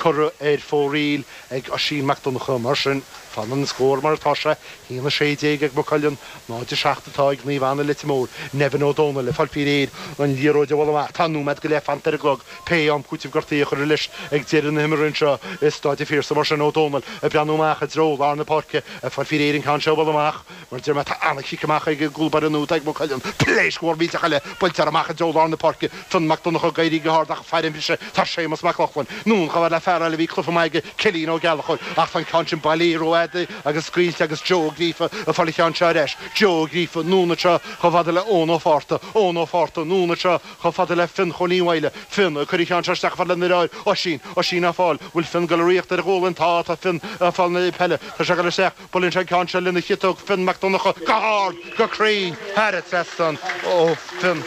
Cuireadh ar fóraoil ag Oisín Mac Donnchadha mar sin. Fanann an scór mar atá sé, 1 16 ag Maigh Cuilinn, 0 7 atá ag Naomh Anna Leitir Móir. Nevin Ó Dónaill ag fáil faoi réir an liathróid a bhualadh amach. Tá nóiméad go leith fanta ar an gclog. Pé am cúiteamh gortaithe a chuirfear leis ag deireadh na himeartha anseo i Stáid an Phiarsaigh mar sin, Ó Dónaill ag breathnú amach i dtreo lár na páirce ag fáil faoi réir an ceann seo a bhualadh amach. Mar Dermot tá an-chic amach ag an gcúl báire nua atá ag Maigh Cuilinn, pléisc mhór mhillteach eile buailte air amach i dtreo lár na páirce, Fionn Mac Donnacha, ag éirí go hard ach faoin mbriseadh tá Séamus Mac Lochlainn, anonn chomh fada le fear eile a bhí cluiche maith aige, Cillín Ó Gallchóir, ach tá an ceann sin bailithe rófhada agus scaoilte agus Joe Ó Gríofa ag fáil an cheann seo ar ais, Joe Ó Gríofa, anonn anseo chomh fada le Eoin Ó Fátharta, Eoin Ó Fátharta, anonn anseo chomh fada le Fionn Chóilín Mhaidhle, Fionn, ag cur an cheann seo isteach chomh fada lena dheartháir, Oisín, Oisín á fáil, bhfuil Fionn ag dul ag ritheacht ar a ghualainn, tá, tá Fionn ag fáil na peile, tá sé ag dul isteach, Buaileann sé an ceann seo lena chiotach, Fionn Mac Donnacha, go hard, go cruinn, thar an trasnán. Oh Fionn!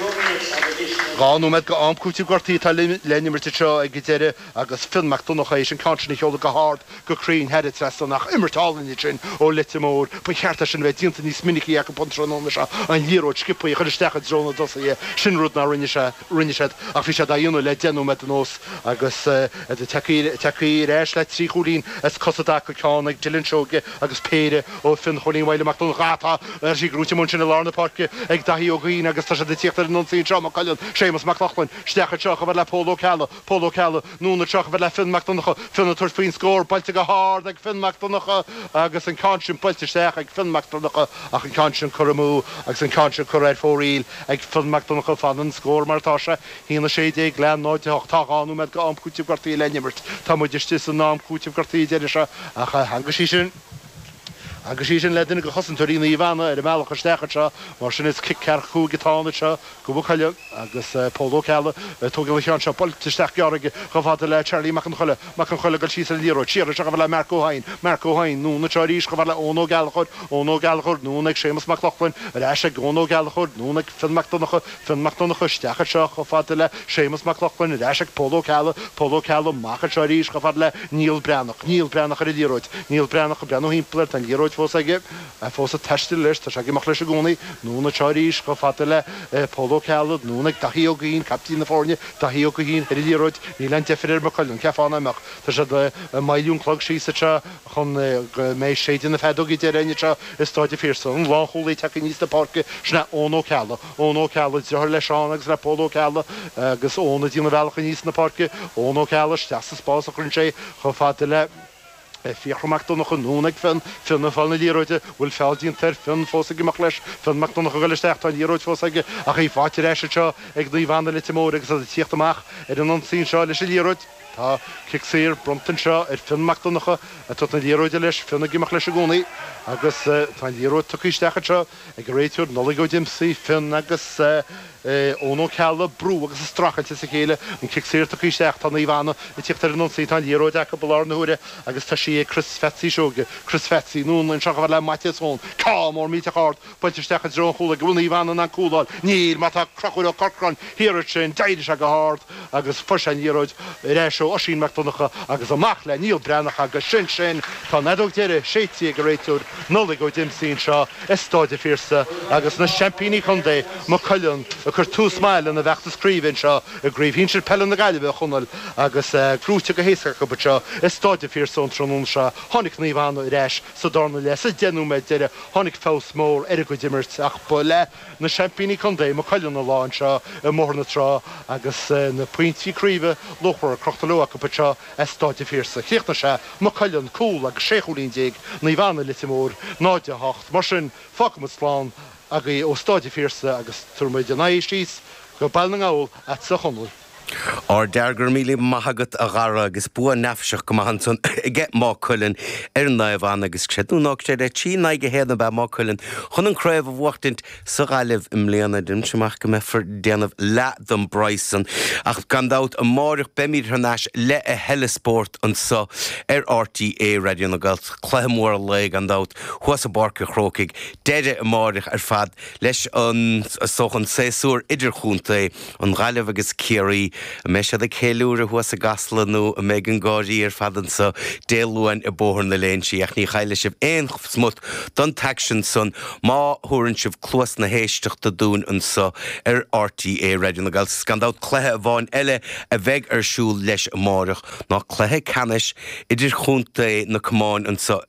Dhá nóiméad de am cúitimh gortaithe atá le n-imirt anseo ag an deireadh agus Fionn Mac Donnacha éis an ceann sin a sheoladh go hard, go cruinn, thar an trasnán ach imirt álainn é sin ó Leitir Móir. Ba cheart é sin a bheith déanta níos minicí acu an tráthnóna seo, an liathróid sciopthaí a chur isteach i dtreo na dtosaithe, sin rud nár rinne sé. rinne siad ach bhí siad á dhéanamh le deich nóiméad anuas agus tagtha ar ais le trí chúilín as cosa i dtaca ceann ag Dylan Seoige agus péire ó Fionn Chóilín Mhaidhle Mac Donnchadha tá sé gnóite amach ansin i lár na páirce ag Daithí Ó Gaoithín agus tá siad ag tíocht ar an ionsaí anseo Maigh Cuilinn, Séamus Mac Lochlainn, isteach anseo chomh fada le Pól Ó Ceallaigh Pól Ó Ceallaigh. Anonn anseo chomh fada le Fionn Mac Donncha Fionn ag tabhairt faoin scór buailte go hard ag Fionn Mac Donncha agus an ceann sin buailte isteach ag Fionn Mac Donncha ach an ceann sin curtha amú agus an ceann sin curtha ar fóraoil ag Fionn Mac Donncha Fanann an scór mar atá sé 1 16 le 0 8 Tá dhá nóiméad de am cúiteamh gortaithe le n-imirt Tá muid istigh san am cúiteamh gortaithe deiridh seo ach theagmhaigh sí sin theagmhaigh sí sin le duine de chosantóirí Naomh Anna ar an mbealach isteach anseo mar sin is cic ceathracha cúig atá ann anseo Do Mhaigh Cuilinn agus Pól Ó Ceallaigh ag tógáil an cheann seo. Buailte isteach gearr aige chomh fada le Charlie Mac an Choiligh. Mac an Choiligh ag dul síos ar an liathróid. Siar ar ais chomh fada le Marc Ó hEidhin. Marc Ó hEidhin, anonn anseo arís chomh fada le Eoin Ó Gallchóir. Eoin Ó Gallchóir, anonn ag Séamus Mac Lochlainn. Ar ais ag Eoin Ó Gallchóir. Anonn ag Fionn Mac Donnacha. Fionn Mac Donnacha, isteach anseo chomh fada le Séamus Mac Lochlainn. Ar ais ag Pól Ó Ceallaigh. Pól Ó Ceallaigh, amach anseo arís chomh fada le Niall Breathnach. Niall Breathnach ar an liathróid. Niall Breathnach ag breathnú thimpeall air. Tá an liathróid fós aige. a fós ag taisteal leis, tá sé ag imeacht leis i gcónaí, anonn anseo arís chomh fada le Pól Ó Ceallaigh, anonn ag Daithí Ó Gaoithín, caiptín na foirne, Daithí Ó Gaoithín ar an liathróid, níl aon deifir ar Mhaigh Cuilinn, cheapfá nach mbeadh? Tá siad ag moilliú an clog síos anseo chun go mbeidh séideadh na feadóige deiridh anseo i Stáid an Phiarsaigh, an lánchúlaí ag teacht aníos na páirce, sin é Eoin Ó Ceallaigh, Eoin Ó Ceallaigh, driotháir le Seán agus le Pól Ó Ceallaigh agus Eoin ag déanamh a bhealach aníos na páirce, Eoin Ó Ceallaigh, isteach sa spás a chuireann sé chomh fada le. F Fiachra Mac Donnacha, anonn ag Fionn, Fionn ag fáil na liathróide, bhfuil feall déanta air, Fionn fós ag imeacht leis, Fionn Mac Donnacha ag dul isteach, tá an liathróid fós aige ach í faighte ar ais anseo ag Naomh Anna, Leitir Móir agus iad ag tíocht amach ar an ionsaí anseo leis an liathróid. Tá cic saor bronnta anseo ar Fionn Mac Donnacha atá ag tabhairt na liathróide leis, Fionn ag imeacht leis i gcónaí agus tá an liathróid tugtha isteach anseo. Ag an réiteoir, Nollaig Ó Diomsaí, Fionn agus Eoin Ó Ceallaigh, ag brú agus ag streachailt as a chéile, an cic saor tugtha isteach, tá Naomh Anna ag tíocht ar an ionsaí, tá an liathróid acu i láthair na huaire agus tá sí ag Chris Pheatsaí Seoige, Chris Pheatsaí, anonn anseo dhó le Maitias Eoin, ceann mór millteach ard buailte isteach i dtreo an chúlaigh, an bhfuil Naomh Anna in ann cúl a fháil? Níl, mar tá Crochúr Ó Corcráin thiar ansin, d'éirigh sé go hard. agus fuair sé an liathróid ar ais ó Oisín Mac Donnacha agus amach le Niall Breathnach agus sin sin! Tá an fheadóg deiridh séidtí ag an réiteoir Nollaig Ó Diomsaí anseo i Stáid a' Phiarsaigh agus na seaimpíní contae, Maigh Cuilinn, ag cur tús maith lena bhfeachtas craoibhe anseo i gCraobh Shinsir Peile na Gaillimhe, a Chonaill agus é buaite go héasca acu anseo i Stáid a' Phiarsaigh an tráthnóna seo. Tháinig Naomh Anna ar ais sa darna leath sa deich nóiméad deiridh tháinig feabhas mór ar a gcuid imeartha ach ba le Na seaimpíní contae, Maigh Cuilinn, an lá anseo i mBóthar na Trá agus na pointí craoibhe luachmhara crochta leo acu anseo as Stáid an Phiarsaigh. Chríochnaigh sé, Maigh Cuilinn, cúl agus sé chúilín déag, Naomh Anna, Leitir Móir, náid a hocht. Mar sin, fágfaimid slán agaí ó Stáid an Phiarsaigh agus tabharfaimid aghaidh síos go Baile na nGall agatsa a Chonaill. Á ardfhear go raibh míle maith agat a Dhara agus bua neafaiseach go maith ansan aige Maigh Cuilinn ar Naomh Anna agus creid nó ná creid é 'trí in aghaidh a haon' ab ea Maigh Cuilinn chun an craobh a bhuachtaint sa Ghaillimh i mbliana. Deinimse amach go mbeifear ag déanamh leath don bpraghas san ach gan dabht amáireach beimid thar n-ais le a thuilleadh spórt anso ar RTÉ Raidió na Gaeltachta. Cluiche mór an lae gan dabht thuas i bPáirc a' Chrócaigh deireadh amáireach ar fad leis an an saesúr idirchontae. An Ghaillimh agus Ciarraí, an mbeidh siad ag ceiliúradh thuas i gCasla nó an mbeidh an gháir ar fad anseo Dé Luain i mBóthar na Léinsí ach ní chaillfidh sibh aon smut don t-aicsean san má thabharann sibh cluas na héisteachta dúinn anseo ar RTÉ Raidió na Gaeltachta. Gan dabht cluiche amháin eile a bheidh ar siúl leis amárach ná cluiche ceannais idirchontae na gcamán anseo,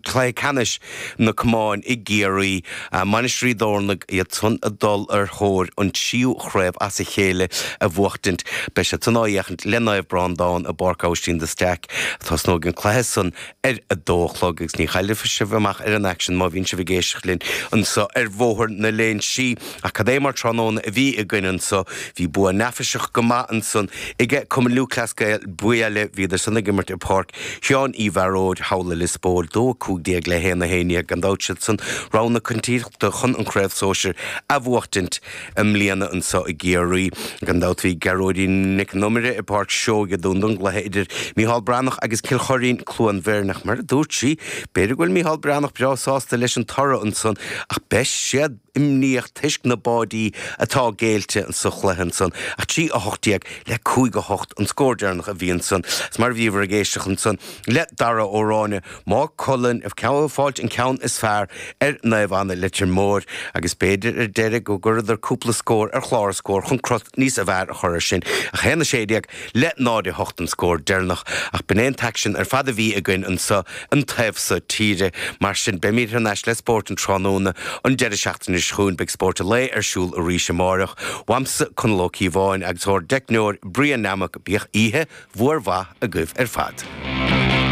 cluiche ceannais na gcamán i gCiarraí. Mainistir Ó dTorna iad san ag dul ar thóir an tríú chraobh as a chéile a bhuachtaint. Beidh siad san á fhéachaint le Naomh Breándán i bPáirc Abhaistín de Staic. Tosnóidh an cluiche san ar a dó a chlog agus ní chaillfidh sibh amach ar an aicsean má bhíonn sibh ag éisteacht linn anso ar Bhóthar na Léinsí. Ach cad é mar tráthnóna a bhí againn anseo. Bhí bua neafaiseach go maith ansan aige Cumann Lúthchleas Gael, Biaille, bhíodar san ag imirt i Páirc Sheáin Uí Bharóid, thall i Lios Póil, dó 15 le 1 1. Gan dabht siadsan rogha na coitiantachta chun an Chraobh Shóisir a bhuachtaint i mbliana anseo i gCiarraí. Gan dabht bhí Gearóidín Nic an Iomaire i Páirc Seoighe dúinn don gcluiche idir Micheál Breathnach agus Cill Choirín, Cluain Bheirn. Ach mar a dúirt sí, b'fhéidir go bhfuil Micheál Breathnach breá sásta leis an toradh ansan ach beidh siad Imníoch toisc na báidí atá géillte insa chluiche ansan. Ach trí a hocht déag le cúig a hocht an scór deireanach a bhí ansan. Is mar a bhíobhair ag éisteacht ansan le Dara Ó Ráinne, Maigh Cuilinn ag fáilt an ceann is fearr ar Naomh Anna Leitir Móir agus b'fhéidir ar deireadh go gcuireadar cúpla scór ar chlár na scór chun crut níos fearr a chur ar sin. Ach a haon a sé déag. le náid a hocht an scór deireanach ach b'in é an t-aicsean ar fad a bhí againn anseo an taobh so tíre. Mar sin, beimid thar n-ais le spórt an tráthnóna an deireadh seachtaine seo chugainn. Beidh Spórt an Lae ar siúl arís amárach. Uaimse, Conall Ó Cíobháin agus ór dteicneoir Brian Nammock, bíodh oíche mhór mhaith agaibh ar fad.